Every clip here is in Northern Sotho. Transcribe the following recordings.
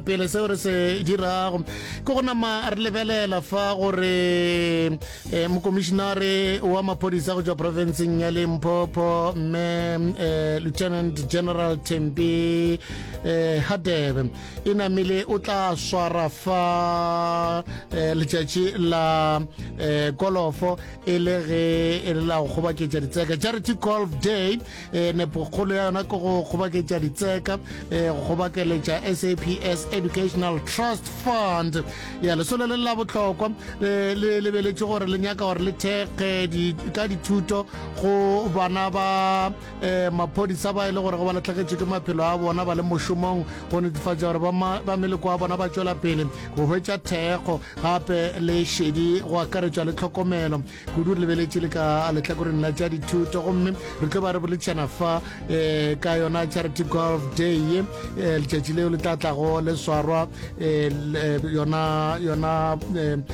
pele seo re se dirago ke go nama re lebelela fa gore um mokomišinare wa maphodisa go tswa profenseng ya limpopo mme um lieutenant general tempi um eh, hadebe e namile o tla swara fa um letšatši la um kolofo e le ge e le la go kgobaketša ditseka charity golf day e nepokgolo ya yona ke go kgobaketša ditseka e go kgobakeletša saps educational trust fund ya lesole le la bohlokwa le lebeletše gore le nyaka gore le thekge ka dithuto go bana ba um maphodisa ba e le gore go ba latlhegetše ke maphelo a bona ba le mošomong go netefatša gore ba meleko wa bona ba tšwela pele go hwetša thekgo gape le šedi go akaretšwa le tlhokomelo kudu re lebeletše le ka lehlakoreng la tša dithuto gomme re tlo ba re boletšana fa um ka yona charity golf day ye um letšatši leo le tla tlago le swarwa um yona yona um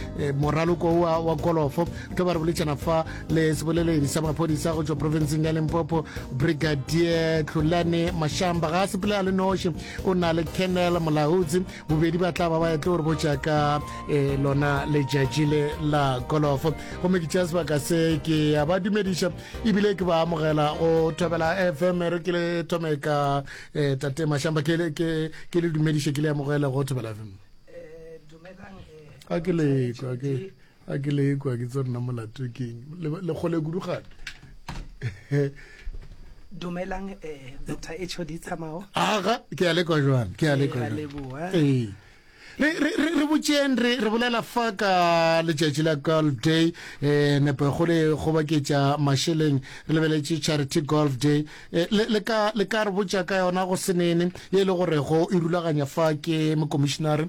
moraloko wa wa golofo re tlo ba re boletšana fa le seboleledi sa maphodisa go tšwa provinceng ya limpopo brigadier tlholane mashamba ga a sepele a le noši o na le kennel molautsi bobedi ba tla ba ba etlo re botša ka eh, lona letšatši le la golofo gomme ke tšea sebaka se ke ya ba dumediša ebile ke ba amogela go thobela fm re ke le thome ka eh, tate mašamba ke le- ke- ke le dumediše ke le amogele go thobela fm a ke lekwa ke a ke le ekwa ke tse rena molato keng le kgole kudu gane dumelang um eh, dr hod tsamao aga ke ya lekwa jwang ke ya eh, lekwa ee re botseng re bolela fa ka letšatši la golf day um nepo go le gobaketša mašeleng re lebeletše charity golf day eh, le ka re botša ka yona go senene ye e le gorego e rulaganya fa ke mokomišenare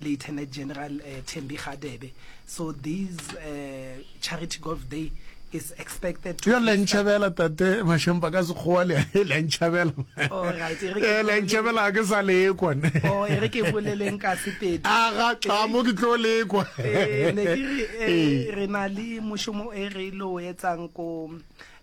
Lieutenant General uh, Thembi Kgadebe. So these uh, Charity Golf Day is expected to... Yo le ntšhabela tate Mashempa ka sekgowa le le ntšhabela. Oh, right. Eh, le ntšhabela ke sa le ekwa. Oh, e re ke boleleng ka sepedi. A ga tla mo ke tlo le ekwa. Eh, ne ke re eh, eh. re na le moshomo e re lo etsang ko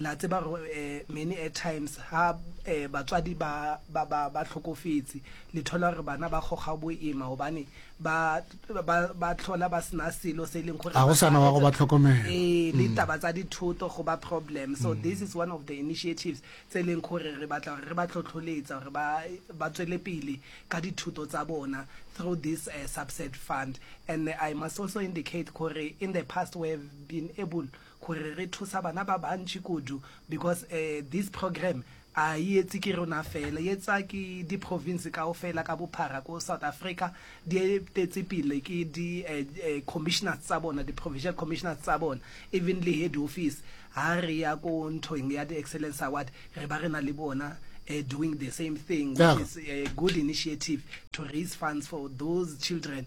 Le a tseba gore um many a times ha um batswadi ba ba ba ba hlokofetse le thola gore bana ba kgoga boima gobane ba ba ba tlhola ba sena selo se e leng gore Ga go ba sana ka wa go etsa- ba tlhokomela. Mm. ee le taba tsa dithoto go ba problem so this is one of the initiatives tse e leng gore re batla gore re ba tlhotlholetsa gore ba ba tswele pele ka dithuto tsa bona through this uh, subset fund and i must also indicate gore in the past we have been able gore re thusa bana ba bantši kudu because um this program a yi etse ke rona fela, yi etsa ke di province kaofela ka bophara ko South Africa, di etetse pele ke di um commissioners tsa bona, di provincial commissioners tsa bona, even le head office ha re ya ko nthong ya di excellence award re ba re na le bona um doing the same thing, which is a good initiative to raise funds for those children.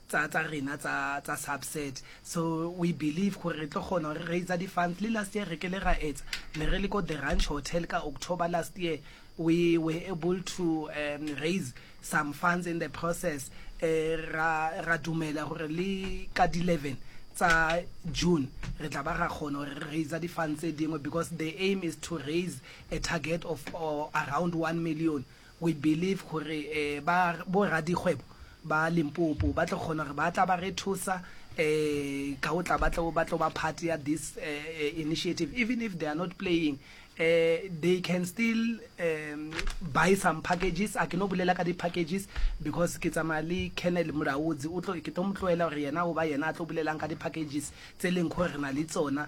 tsa tsa rena tsa tsa subset so we believe gore re tlo kgona gore raise di funds le last year re kele ra etsa ne re le ko the ranch hotel ka october last year we were able to um, raise some funds in the process uh, ra ra dumela gore le ka di 11 tsa june re tla ba ra kgona gore re raise di funds tse dingwe because the aim is to raise a target of uh, around 1 million We believe gore ba bo radikgwebo ba Limpopo ba tlo kgona gore ba tla ba re thusa ka go tla ba tlo ba tlo ba part ya this initiative even if they are not playing they can still buy some packages a ke no bolela ka di packages because ke tsamaya le Colonel Mulaudzi o tlo ke tlo mo tloela gore yena o ba yena a tlo bolelang ka di packages tse leng gore re na le tsona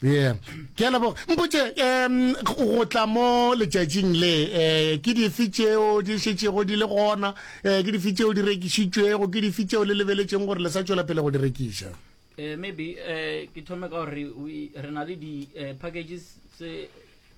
Yeah. Ke a leboga. Mpotše, um go tla mo letšatšing le, um ke dife tšeo di šetšego di le gona, um ke dife tšeo di rekišitšwego, ke dife tšeo le lebeletšeng gore le sa tšwela pele go di rekiša? Eh, maybe eh, ke thome ka gore re na le di-packages eh, tse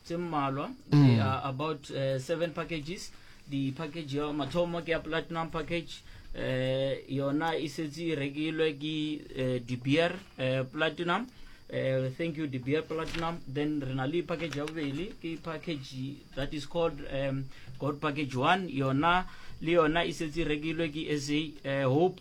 tse mmalwa they mm. are about uh, seven packages the package ya mathomo ke ya platinum package eh yona e setse e rekilwe ke eh, de beer eh, platinum eh, thank you de beer platinum then re na le package ya bobedi ke package that is called um, god package one yona le yona e setse e rekilwe ke sa eh, hope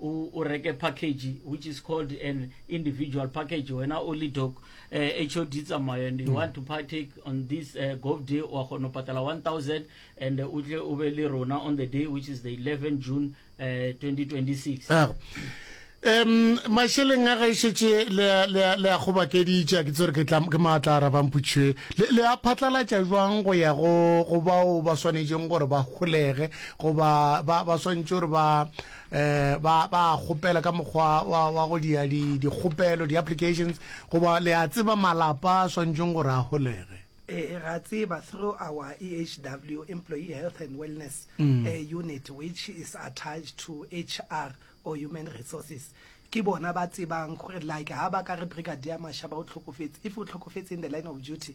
o, o reke package which is called an individual package wena o le doc uh, hod tsamayo and you mm. want to partake on this uh, gov day wa kgona go patala 1000 and o tle o be le rona on the day which is the 11 june uh, 2026 ah. um mašeleng a gaešetse le a gobakeditša ke tsere ke maatla a rabamputšhwe le a phatlalatša jwang go ya go bao ba swanetšeng gore ba golege goba ba swanetše gore ba um ba ba kgopela ka mokgwa wa wa go dia di dikgopelo di applications goba le a tseba malapa a swantšeng gore a holege Eh, ra tseba through our EHW, Employee Health and Wellness Mm. eh, Unit, which is attached to HR or Human Resources. Ke bona ba tsebang gore like ha ba ka re Brigadier Mashaba o tlhokofetse, if o tlhokofetse in the line of duty,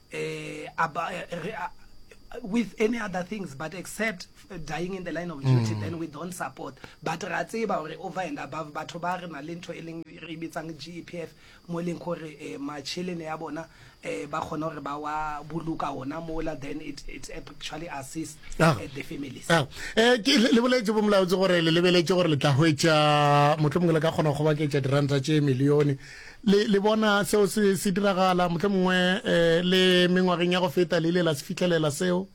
eh, about, eh, re, uh, with any other things but except dying in the line of duty mm. then we don't support but ra tseba gore over and above batho ba re na le ntho e leng re bitsang g e p f mo e leng gore eh, machelene ya bona eh, ba kgona gore ba wa boloka ona mola then it, it actually assist ah. eh, the families ah. eh, le boletse bo molaotse gore le lebeletse gore le tla hwetša motlho mongwe le ka kgona go baketša diranta tše milione Le, le bona seo se, se diragala, mohle mongwe eh, le mengwageng ya go feta le ile la se fihlelela seo.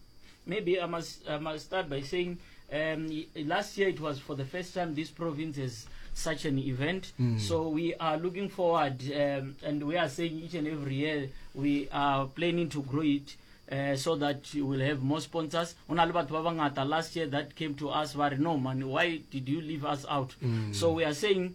Maybe I must, I must start by saying um, last year it was for the first time this province has such an event. Mm. So we are looking forward um, and we are saying each and every year we are planning to grow it. Uh, so that you will have more sponsors ona le batho ba bangata last year that came to us ba re no man why did you leave us out mm. so we are saying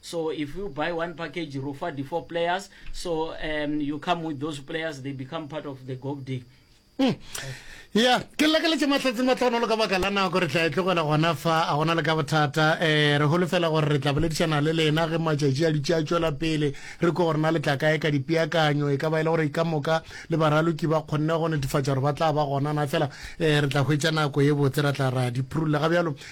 So if you buy one package, you offer the four players. So um, you come with those players, they become part of the GOB day. Mm. ya ke lakeletse matlhatse matlhanolo ka baka la nako re tla e tlogela gona fa a gona le ka bothata um re holofela gore re tla boledišana le lena ge matšatši a ditši a tšwela pele re ko gorena le tla kae ka dipeakanyo e ka ba e le gore ka moka le baraloki ba kgonne go netefatša gore ba tla ba gonana fela um re tla hwetša nako ye botse ra tla ra di phurulla ga bjalo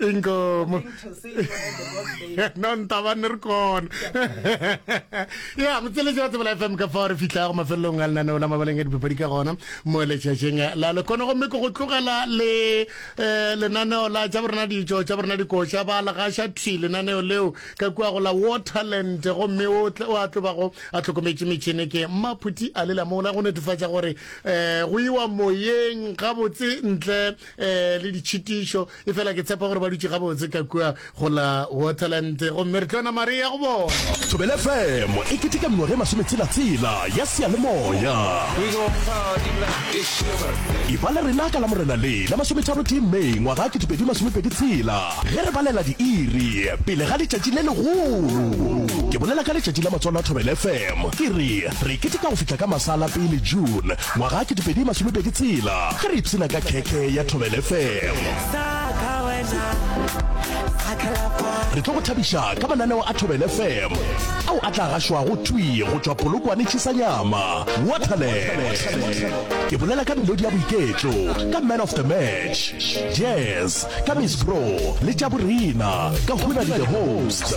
inkomo no ntaba ne re kona ya motseletši wa tsebela fm ka fao re fitlhago mafelelong a lenaneo la mabaleng a dipapadi ka gona mo letšatšeng la lekone gomme ke go tlogela le um lenaneo la tša borena ditšo tša borena dikoša ba legaša thi lenaneo leo ka kua go la waterland gomme o a tlobago a tlhokometše metšhene ke mmaphuti a lela mola go netefatša gore um go iwa moyeng gabotse ntle eh le ditšhitišo e fela ke tshepa gore ba dutše gabotse ka kua go la waterland gomme re tlona maria go bona thobele fm e keteka mengwaga e masometshelatsela ya seyalemoya e ba le rena ka la morena le la masometharo tee may ngwaga ke dipedi masomepedi tshela ge re balela diiri pele ga letšatši le legolo ke bolela ka letšatši la matswalo a thobele fm ke re re keteka go fihla ka masala pele june Ngwaga ke dipedi masome pedi tshela ge re ipshina ka khekhe ya Thobel FM. Re tlo go thabiša ka mananeo a Thobel FM ao a tla gašwago thwi go tšwa Polokwane Tšhisanyama, Waterland. Ke bolela ka melodi ya boiketlo ka Man of the Match, Jazz ka Miss Bro le tša borena ka Huna le The Host.